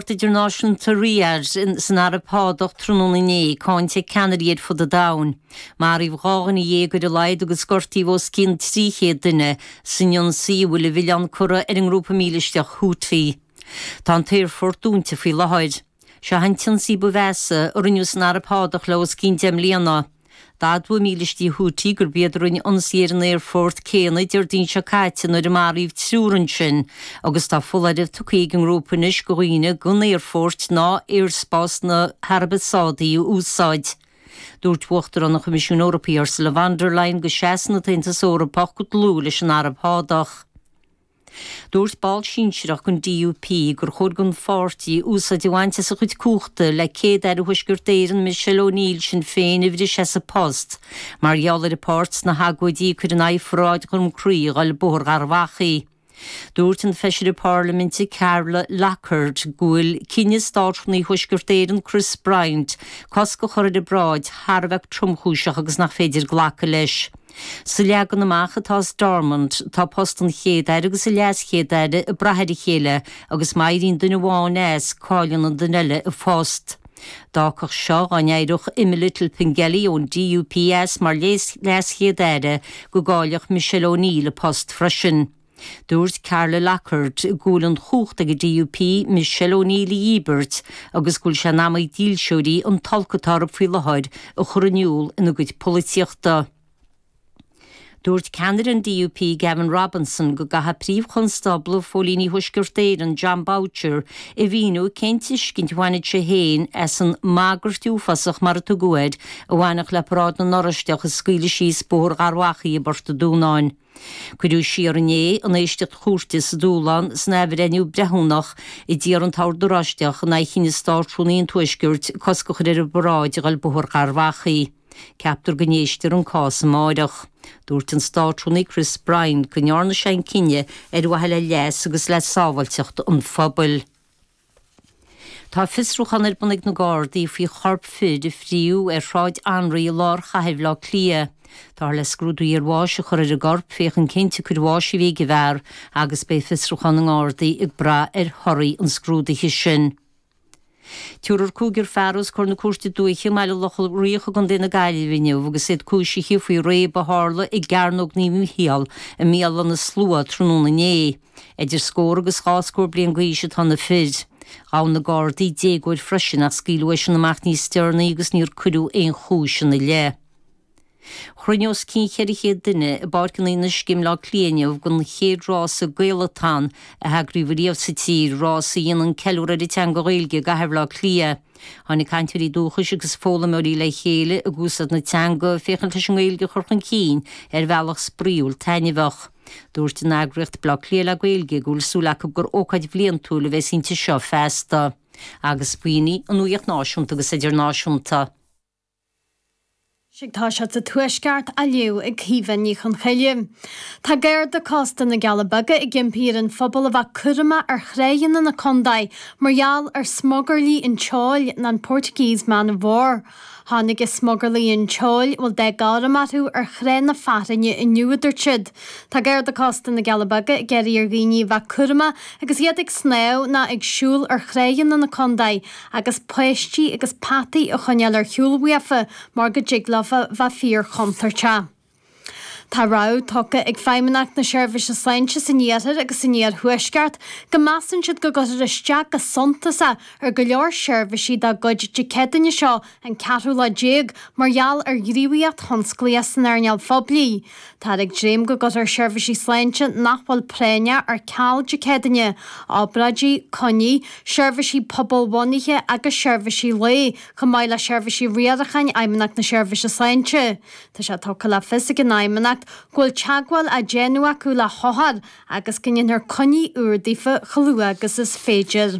Aerfort Idirnáisiúnta Riyadh san Araib Shádach tráthnóna inné, cáinte ag ceannairí ar fud an domhain. Maraíodh dhá dhuine dhéag ar a laghad agus gortaíodh os cionn 300 duine san ionsaí a bhfuil a mhilleán curtha ar an ngrúpa mílisteach Houthi. Tá an t-aerfort dúnta faoi láthair. Seo an t-ionsaí ba mheasa a rinneadh san Araib Shádach le os cionn deich mbliana. D'admhaigh mílístí Houthi gurb iad a rinne ionsaí ar an aerfort céanna Déardaoin seo caite nuair a maraíodh triúr ansin agus tá foláireamh tugtha ag an ngrúpa anois do dhaoine gan aerfoirt ná aerspás na hAraibe Sádaí a úsáid. Dúirt Uachtarán an Choimisiúin Eorpaigh Ursula von der Leyen go seasann an tAontas Eorpach go dlúth leis an Araib Shádach. Dúirt ball sinsearach den DUP gur chóir don pháirtí úsáid a bhaint as a chuid cumhachta le Céad-Aire Thuaisceart Éireann Michelle O'Neill Shinn Féin a bhriseadh as a post mar gheall ar a páirt sna hagóidí a cuireadh in aghaidh pharáid Dhroim Crí a ghoil Bóthar Gharbh Achaidh. Dúirt an feisire Parlaiminte Carla Lockhart go bhfuil cinneadh Státrúnaí Thuaisceart Éireann Chris Bryant cosc a chur ar an bparáid thar a bheith tromchúiseach agus nach féidir glacadh leis. Sa leagan amach atá i Stormont, tá post an Chéad-Aire agus an LeasChéad-Aire ag brath ar a chéile agus má éiríonn duine amháin as, cailleann an duine eile a phost. D'fhágfadh seo, dá n-éireodh Emma Little-Pengelly ón DUP as mar LeasChéad-Aire, go gcaillfeadh Michelle O'Neill a post freisin. Dúirt Carla Lockhart go bhfuil an chumhacht ag an DUP Michelle O'Neill a dhíbirt agus go bhfuil sé in am ag dílseoirí an t-olc atá orthu faoi láthair a chur in iúl ina gcuid polaitíochta. Dúirt ceannaire an DUP Gavin Robinson go gcaithfidh Príomh-Chonstábla Phóilíní Thuaisceart Éireann Jon Boutcher a mhíniú cén tuiscint a bhainfidh sé féin as an 'mbagairt uafásach', mar a tugadh air, a bhainfeadh le paráid na nOráisteach a scaoileadh síos Bóthar Gharbh Achaidh i bPort an Dúnáin. Cuireadh siar inné an éisteacht chúirte sa dúshlán san athbhreithniú breithiúnach a d'iarr an tOrd Oráisteach in aghaidh chinneadh Státrúnaí an Tuaiscirt cosc a chur ar an bparáid a ghoil Bóthar Gharbh Achaidh. Ceaptar go n-éistfear an cás amáireach. Dúirt an Státrúnaí Chris Bryant go ndearna sé an cinneadh ar mhaithe le leas agus le sábháilteacht an phobail. Tá fiosrúchán ar bun ag na Gardaí faoi chorp fir a fríodh ar Shráid Anraí i lár chathair Bhaile Átha Cliath. Táthar le scrúdú iarbháis a chur ar an gcorp féachaint cén tsiocair bháis a bhí ag an bhfear agus beidh fiosrúchán na nGardaí ag brath ar thorthaí an scrúdaithe sin. Tabharfar cúigear fear os comhair na Cúirte Dúiche i mBaile Locha Riach i gcontae na Gaillimhe inniu agus iad cúisithe faoi chíréib a tharla i gCearnóg Naomh Mhicheál i mBéal Átha na Sluaighe tráthnóna inné. Idir scór agus dhá scór bliain d'aois atá na fir. Ghabh na gardaí déagóir freisin ach scaoileadh eisean amach níos deireanaí agus níor cuireadh aon chúis ina leith. Chruinnigh os cionn cheithre chéad duine i bPáirc an Fhionnuisce i mBleá Cliath inniu don chéad rása Gaelathon a heagraíodh ariamh sa tír, rás a dhéanann ceiliúr ar an teanga Ghaeilge i gcathair Bhleá Cliath. Tháinig cainteoirí dúchais agus foghlaimeoirí le chéile ag úsáid na teanga féachaint leis an nGaeilge a chur chun cinn ar bhealach spraíúil taitneamhach. Dúirt an eagraíocht Bleá Cliath le Gaeilge go bhfuil súil acu gur ócáid bhliantúil a bheas inti seo feasta. agus b'shin í an nuaíocht náisiúnta agus idirnáisiúnta. Seo Tá scéalta sa Tuaisceart á léamh ag Caoimhe Ní Chonchoille. Tá Garda Cósta na gCealla Beaga ag impí ar an phobal a bheith cúramach ar thránna na contae mar gheall ar smugairlí an tseoil, nó an Portuguese man of war. Tháinig smugairlí an tseoil, a bhfuil dath gorm orthu ar Thráigh na Fearthainne inniu, a dúirt siad. Tá garda cósta na gCealla Beaga ag iarraidh ar dhaoine a bheith cúramach agus iad ag snámh ná ag siúl ar thránna na contae agus páistí agus peataí a choinneáil ar shiúl uafa mar go dtig leofa bheith fíorchontúirteach. Tá rabhadh tugtha ag Feidhmeannacht na Seirbhíse Sláinte san iarthar agus san iarthuaisceart go measann siad go gcuirfear isteach go suntasach ar go leor seirbhísí dá gcuid Dé Céadaoine seo an ceathrú lá déag mar gheall ar ghníomhaíocht thionsclaíoch san earnáil phoiblí. Táthar ag dréim go gcuirfear seirbhísí sláinte nach bhfuil práinneach ar ceal Dé Céadaoine, obráidí, coinní, seirbhísí pobalbhunaithe agus seirbhísí lae, chomh maith le seirbhísí riaracháin Fheidhmeannacht na Seirbhíse Sláinte. Tá sé tugtha le fios ag an Fheidhmeannacht go bhfuil teagmháil á déanamh acu le hothair agus go ndéanfar coinní úra daofa chomh luath agus is féidir.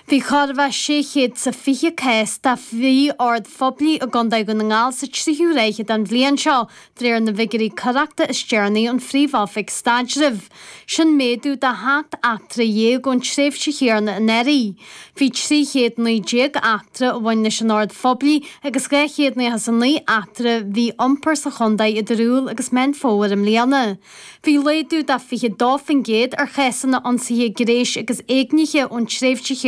Bhí chóir a bheith 600 is a 20 cás de mhí-ord phoiblí i gContae Dhún na nGall sa tríú ráithe den bhliain seo, de réir na bhfigiúirí coireachta is deireanaí ón Phríomh-Oifig Staidrimh. Sin méadú de sheacht eachtra dhéag ón tréimhse chéanna anuraidh. Bhí trí chéad naoi déag eachtra a bhain leis an ord phoiblí agus dhá chéad nócha is a naoi eachtra mí-iompair sa chontae idir Iúil agus Meán Fómhair i mbliana. Bhí laghdú de fiche dó faoin gcéad ar chásanna ionsaithe gnéis agus éignithe ón tréimhse chéanna.